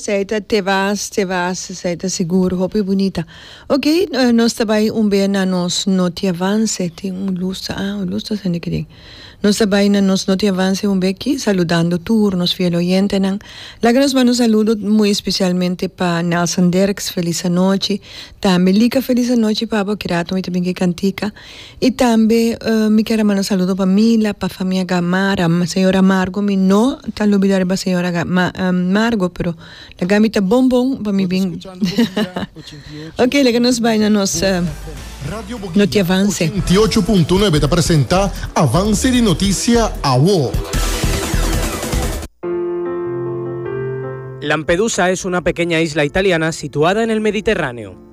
Esei ta te vas, te vas, esei ta sigur, hopi bunita. Ok, nos ta bai un bea na nos noti avance, tin un luz, ah, un luz ta sende aki den. Nos ta bai na nos noti avance un bea aki, saludando tur nos fiel oyentenan. Laga nos manda un saludo muy especialmente pa Nelson Derks, felis anochi, tambe Lika felis anochi, papa, oki rato mi ta bin ke Kantika. Y tambe mi kier a manda saludo pa Mila, pa famia Gamar, señor Amargo, mi no ta lubida riba señora Margo, pero la Gami ta bon bon pa mi bin. Ok, laga nos bai na nos noti avance. Radio Boca ochenta i ocho punto nuebe ta presenta Avance di Noticia Awo. Lampedusa es una pequeña isla italiana situada en el Mediterráneo.